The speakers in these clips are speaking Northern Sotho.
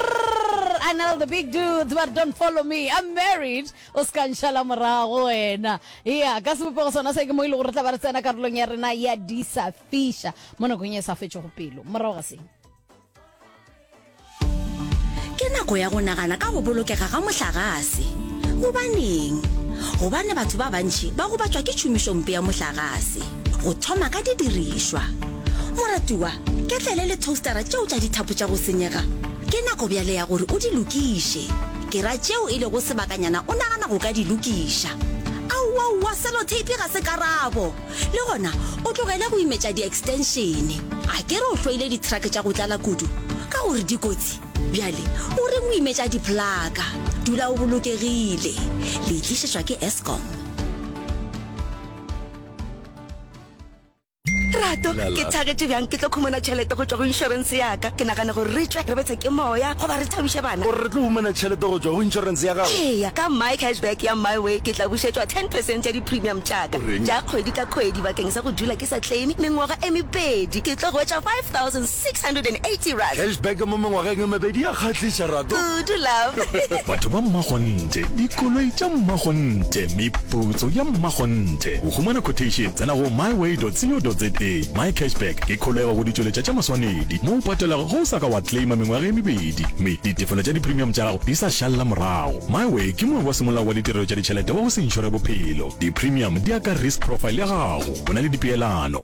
Prrrr, Anel the big dudes, but don't follow me, I'm married. O ska nšala morago wena. Ea, ka sebopego sona se ke mo e le gore re tla ba re tsena karolong ya rena ya di sa fiša mo nakong e sa fetšego pelo. Morago ga seng. Ke nako ya go nagana ka go bolokega ga mohlagase. Gobaneng? Gobane batho ba bantši ba gobatšwa ke tšhomišompe ya mohlagase. Go thoma ka didirišwa. Moratiwa, ketlele le thostara tšeo tša dithapo tša go senyega. Ke nako bjale ya gore o di lokiše. Ke ra tšeo e lego sebakanyana o nagana go ka di lokiša. Aowaowa, seloteipi ga se karabo! Le gona o tlogele go imetša diekstenšene. A ke re o hloile dithrake tša go tlala kudu ka gore di kotsi? Bjale o reng o imetša diphlaka? Dula o bolokegile. Le e tlišetšwa ke Eskom. rato ke thagetše bjang ke tlo khumana tšhelete go tšwa go insurance yaka ke nagana gore re tswe re betshe ke moya goba re thabiše bana gore re tlo humana tšhelete go tswa go insurance ya gago eya ka my cashback ya my way ke tla bušetšwa ten percent ya di-premium tšaka tša kgwedi ka kgwedi bakeng sa go dula ke sa claime mengwaga e mepedi ke tlo hwetša five thousand 680. Cashback mo mengwageng e mebedi ya kgahliša rato kudu love. Batho ba mmakgonthe, dikoloi tša mmakgonthe, meputso ya mmakgonthe. Go humana quotation tsena go myway.co.za. MyCashback ke kholego go ditšweletša tša maswanedi mo o patelago ge o sa ka wa claima mengwaga e mebedi mme ditefelo tša dipremium tša gago di sa šalela morago. Myway ke moabi wa semolao wa ditirelo tša ditšhelete wa go se inšore bophelo. Dipremium di ya ka risk profile ya gago. O na le dipeelano.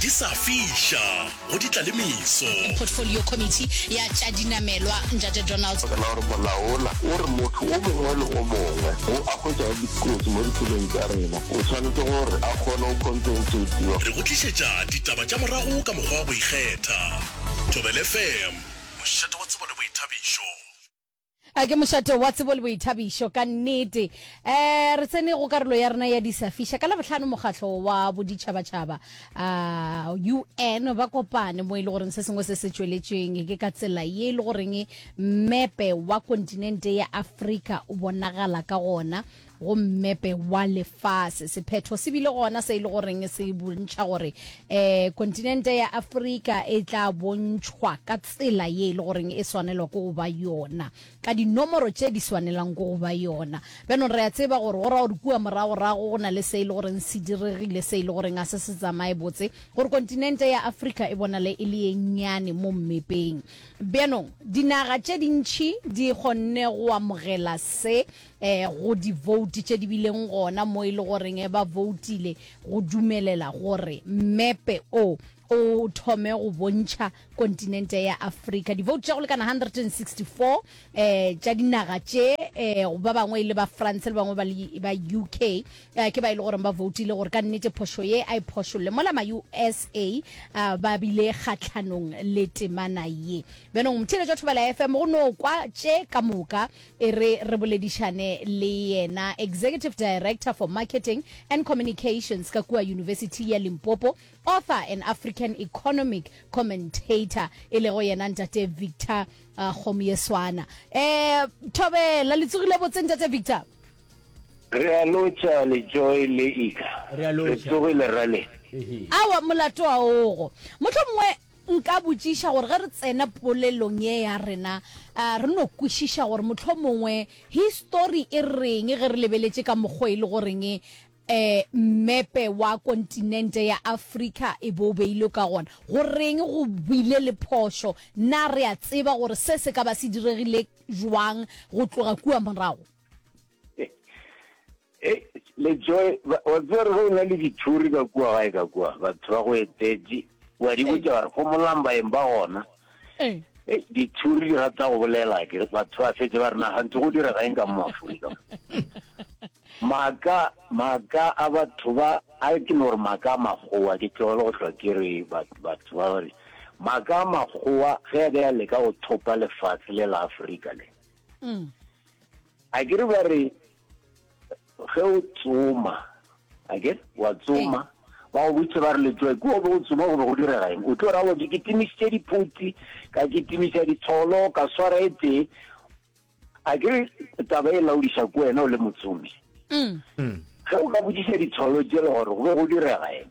di sa fiša go di tla le meso portfolio committee ya tša dinamelwa njate donald ka gore molaola o re motho o mongwe le o mongwe o a hwetšago dikotsi mo ditseleng tša rena o tshwanetse gore a kgone go compensatiwa re go tlišetša ditaba tša morago ka mokgwa wa go ikgetha thobelfm mošate wa tsebo le boithabišo A ke mošate wa tsebo le boithabišo ka nnete. Um re tsene go karolo ya rena ya disafiša. Ka labohlano mokgatlo wa boditšhabatšhaba um un ba kopane mo e le goreng se sengwe se se tšweletšweng ke ka tsela ye e le goreng mepe wa kontinente ya afrika o bonagala ka gona go mmepe wa lefase. Sephetho se bile gona se e le goreng se bontšha gore um kontinente ya Afrika e tla bontšhwa ka tsela ye e le goreng e swanelwa ke go ba yona, ka dinomoro tše di swanelang ke go ba yona. Bjanong re a tseba gore go ra gore kua moragorago go na le se e le goreng se diregile se e le goreng ga se se tsamaye botse gore kontinente ya Afrika e bonale e le ye nnyane mo mmepeng. Bjanong dinaga tše dintši di kgonne go amogela se eh, go divouti tše di bileng gona mo e le goreng eh, ba voutile go dumelela gore mepe o o thome go bontšha kontinente ya afrika divouti tša go lekana 164 eh tša dinaga tše eh ba bangwe e le ba france le bangwe ba uk eh, ke ba e le gore ba voutile gore ka nnete phošo ye a e phošolle mola ma-usa eh, ba bile kgatlhanong le temana ye bjanong mothiletšo thobela fm go no kwa tše ka moka E re re boledišane le yena Executive Director for Marketing and Communications ka kua Yunibesithi ya Limpopo, author and African economic commentator e lego yena Ntate Victor Kgomo ye Swana. Um, Thobela, le tsogile botse Ntate Victor? Re a lotšha Lejoe le Ika. Re a lotšha. Re tsogile rra le? Ehe. Aowa, molato wa ogo. Mohlomongwe. Nka botšiša gore ge re tsena polelong ye ya rena re no kwešiša gore mohlomongwe histori e reng ge re lebeletše ka mokgo e le goreng mmepe wa kontinente ya Afrika e be o beilwe ka gona. Goreng go bile le phošo? Na re a tseba gore se se ka ba se diregile bjang go tloga kua morago? le joy wa tsere go na le dithuri ka kua gae ka kua batho ba go etetše wa di botša gore go molambaeng ba gona dithuri di rata go bolela ke batho ba fetse ba rena gantse go dira gaeng ka moaforika maaka maaka a batho ba a ke no gore maaka a makgowa ke tlogele go tlwa ke re batho ba gore maaka a makgowa ge a ka ya leka go thopa lefatshe le la aforika le mm. a ke re ba re ge o tsoma a ke wa tsoma ba go botse ba re letsoe ke o be o tsoma go be go direga eng o tlo ra bote ke timisitse diphuti ka ke timisa ditsholo ka swara e tee a ke re taba e laodiša ko wena o le motsomi mm. Mm. ge o ka bodisa ditsholo jele gore go be go direga eng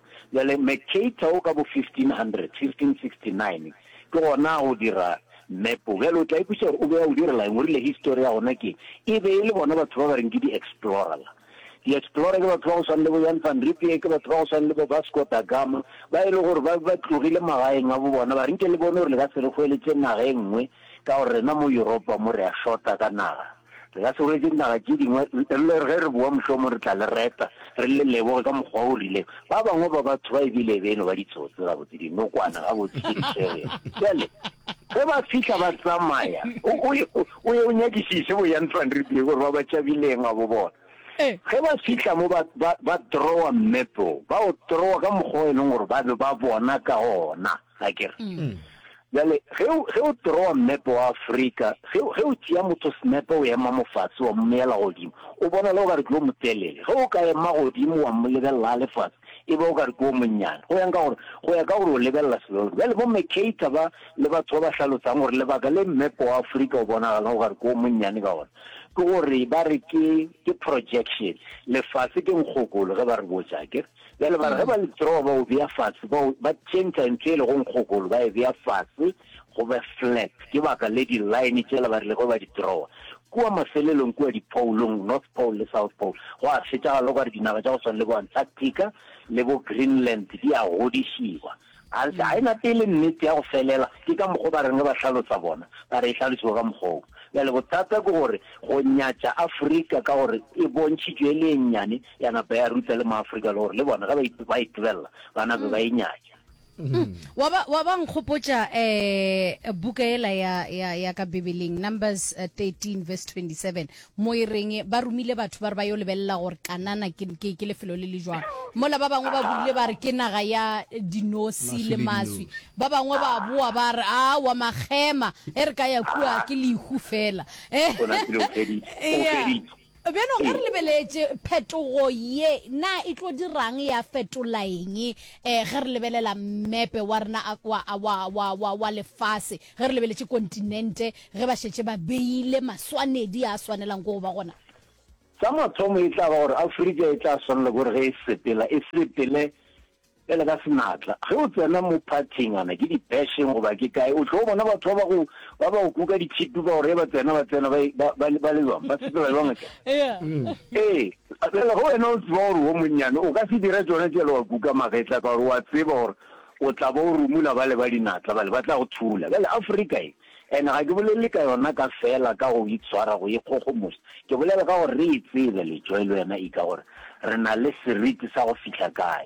Bjale Mercator wo ka bo 1500, 1569, ke gona a o dira map wo. Bjale o tla ikwešiša gore o be a o direla eng, o rile histori ya gona ke eng. E be e le bona batho ba ba reng ke di-explorer. La di-explorer ke batho ba go swana le bo Jan van Riebeeck, ke batho ba go swana le bo Vasco da Gama, ba e le gore ba be ba tlogile magaeng a bo bona ba re, Nke le bone gore le ka se re hweletše naga e nngwe, ka gore rena mo Yuropa mo re a shota ka naga. Re ka se rwetse dinaga tše dingwe le ge re bowa, mohlomong re tla le reta, re le leboge ka mokgwa o rileng. Ba bangwe ba batho ba e bile beno ba ditsotsi gabotse, dinokwane gabotse tše di swerego. Bjale, ge ba fihla, ba tsamaya. O, o ye, o ye o nyakišiše bo Jan van Riebeeck gore ba ba tšabileng, a bo bona. Ge ba fihla mo, ba, ba, ba throwa mmepe wo, ba o throwa ka mokgwa o e leng gore ba be ba bona ka ona. a ke re bjale ge o ge o drawa mmepe wa Afrika ge ge o tšea motho snepe o ema mofatse wa mmeyela godimo o bona le o ka re ke o motelele ge o ka ema godimo wa mo lebelela le fatse e be o ka re ke o monnyane go yang ka gore go ya ka gore o lebelela selo bjale bo mekata ba le batho ba ba hlalotsang gore lebaka le mmepe wa Afrika o bonagala o ka re ke o monnyane ka gona ke gore ba re ke ke projection lefase ke nkgokolo ge ba re botsa ke Bjale ba re ge ba le draw ba o bea fase, ba o, ba tšhentšha ntho e lego nkgokolo ba e bea fase go be flat. Ke baka le di-line tšela ba rile ge ba di drawa kua mafelelong kua diphoulong, North Pole le South Pole, gwa fetšagala okare dinaga tša go swana le bo Antarctica le bo Greenland di a godišiwa. A ntse a ena pele, Nnete ya go felela ke ka mokgo ba reng ge ba hlalosa bona, ba re e hlalosiwe ka mokgwa wo. Bjale bothata ke gore go nyatša Afrika ka gore e bontšhitšwe e le e nnyane ya napa ya ruta le Maafrika le gore le bona ge ba e, ba e tebella ba nape ba e nyatša. Mm. Wa ba, wa ba nkgopotša eh, buka ela ya, ya, ya ka Bibeleng, Numbers eh, 13 verse 27, Mo e reng ba romile batho ba re ba yo lebelela gore Kanana ke, ke, ke lefelo le le jwang. Mola ba bangwe ba burile ba re ke naga ya dinosi le maswi. Ba bangwe ba boa ba re, Aowa, makgema, ge re ka ya kua, ke lehu feela. Gona kile o feditše, o Eya. feditše. Bjalo ge re lebeletše phetogo ye, na e tlo dira'ng, ya fetola'ng eh ge re lebelela mmepe wa rena a, wa, wa, wa, wa, wa lefase? Ge re lebeletše kontinente, ge ba šetše ba beile maswanedi a a swanelang ko go ba gona, Sa mathomo e tla ba gore Afrika e tla swanela ke gore ge e sepela, e sepele bjale ka senatla. Ge o tsena mo phathing, a na ke dibasheng goba ke kae, o tlo bona batho ba ba go, ba ba go kuka dithipi ba go re ge ba tsena, ba tsena ba, ba, ba, ba le bjang, ba sepela bjang tša. Ee, bjale ge wena o tseba gore wo monnyane o ka se dira tšona tšela, wa kuka magetla ka gore wa tseba gore O tla ba o rumola bale ba dinatla bale, ba tla go thula. Bjale, Afrika e, and ga ke bolele ka yona ka feela ka go itshwara, go ikgogomoša, ke bolela ka gore re e tsebe, Letšoe le wena Ika, gore re na le seriti sa go fihla kae.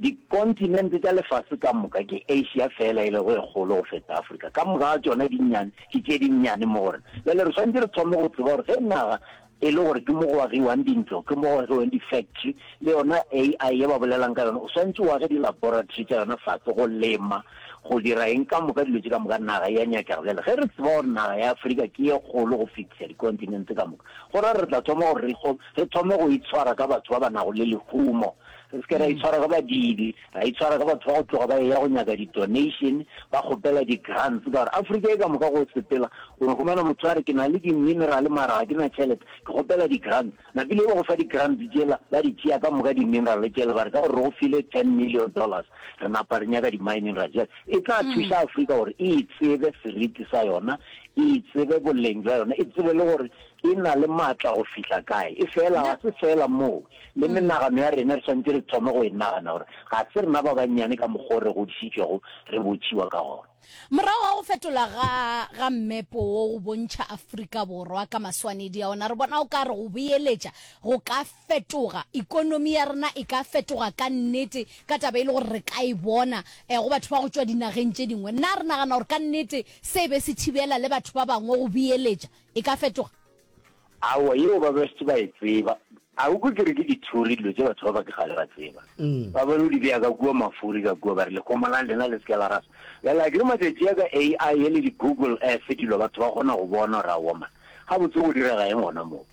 Dikontinente tša lefase ka moka, ke Asia feela e lego e kgolo go feta Afrika. Ka moka ga tšona di nnyane, ke tše di nnyane mo go rena. Bjale re swanetše re thome go tseba gore ge naga e le gore ke mo go agiwang dintlo, ke mo go agiwang di-factory, le yona AI ye ba bolelang ka yona, o swantše o age di-laboratory tša yona fase, go lema, go dira eng, ka moka dilo tše ka moka. Naga ya nyakega. Bjale ge re tseba gore naga ya Afrika ke ye kgolo go fetisa di-continent tse ka moka, go ra re tla thoma gore re thome go itshwara ka batho ba ba nago le lehumo. Re se ke ra itshwara ka badiidi, ra itshwara ka batho ba go tloga ba eya go nyaka di-donation, ba kgopela di-grants, ka gore Afrika e ka moka go sepela, o no humana motho a re ke na le di-mineral mara ga ke na tšhelete, ke kgopela di-grants. Napile ba go fa di-grants tšela, ba di tšea ka moka di-mineral tšela, ba re ka gore re go file ten million dollars, re napa re nyaka di-mining ra jela. E tla thuša Afrika gore e itsebe seriti sa yona, e itsebe boleng bja yona, e tsebe le gore E na le maatla go fihla kae? Efela ga se feela moo. Le menagano ya rena re swanetše re thome go e nagana gore ga se rena ba bannyane ka mokgwa o re godišitšwego re botšiwa ka gona. Morago ga go fetola ga ga mmepo wo go bontšha Afrika Borwa ka maswanedi a ona, re bona o ka re go boeletša go ka fetoga. Ekonomi ya rena e ka fetoga ka nnete ka taba e le gore re ka e bona go batho ba go tšwa dinageng tše dingwe. Na re nagana gore ka nnete se be se thibela le batho ba bangwe go boeletša? e ka fetoga? Aowa, yeo ba best ba e tseba. A o kwe ke re ke dithuri dilo tše batho ba ba ke kgale ba tseba. Ba ba no di bea ka kua mafuri ka kua ba re lekgoma la lena le se ke la rasa. Bjale a ke re matšatši a ka AI ye le di-Google Earth dilo batho ba kgona go bona gore aowa man gabotse go direga eng gona moo.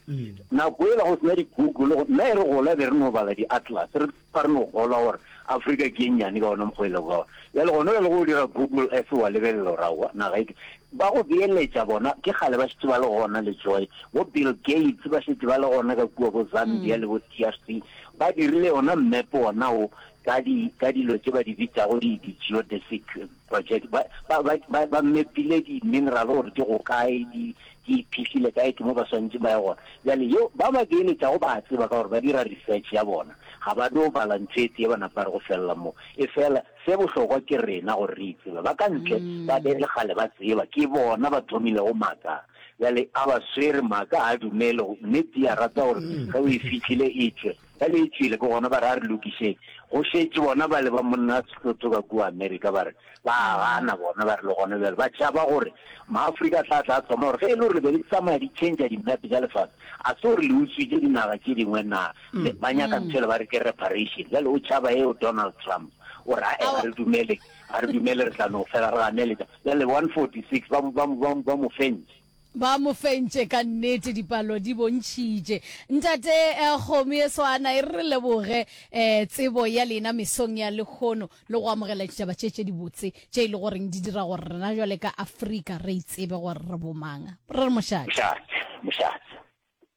Nako yela go se na di-Google nna e re gola be re no bala di-Atlas re Ba re no kgolwa gore Afrika ke ye nnyane ka ona mokgwa o e lego ka ona. Bjale gona bjale ge o dira Google Earth wa lebelela gore aowa naga e ke ba go beeletša bona ke kgale ba šetše ba le gona le Joy bo Bill Gates ba šetše ba le gona ka kua bo Zambia le bo DRC ba dirile yona mmepe wona wo ka di ka dilo tše ba di bitšago di di geodesic project ba ba ba ba ba mepile di mineral gore di go kae di di phihlile kae ke mo ba swantse ba ye gona jale yo ba ba beeletša go ba tseba ka gore ba dira research ya bona ga ba do bala ntshetse ba napa re go fella mo e fela se bohlokwa ke rena gore re itseba ba ka ntle ba be le gale ba tseba ke bona ba thomile go maka jale a ba swere maka a dumele nnete ya rata gore ge o e fitlhile e tswe Ge le e tšwele, ke gona ba re a re lokišeng. Go šetše bona bale ba monna a Sehlotho ka kua Amerika ba re ba a gana bona, ba re le gona bjale ba tšhaba gore Maafrika a tla tla a thoma gore ge e le gore le be le tsamaya di tšhentša dimepe tša lefase, ga se gore le utswitše dinaga tše dingwe na? Le ba nyaka ntho yela ba re ke reparation. Bjale o tšhaba eo Donald Trump, o re ae ga re dumele, ga re dumele re tla no fela re ganeletša. Bjale one forty six ba mo, ba mo, ba mo, ba mo fentše. Ba mo fentše ka nnete, dipalo di bontšhitše. Ntate Kgomo e Swana e re re leboge tsebo ya lena mesong ya lehono le go amogela ditaba tše tše dibotse tše e le goreng di dira gore rena bjale ka Afrika re itsebe gore re bomang. Re re mošate. Mošate, mošate.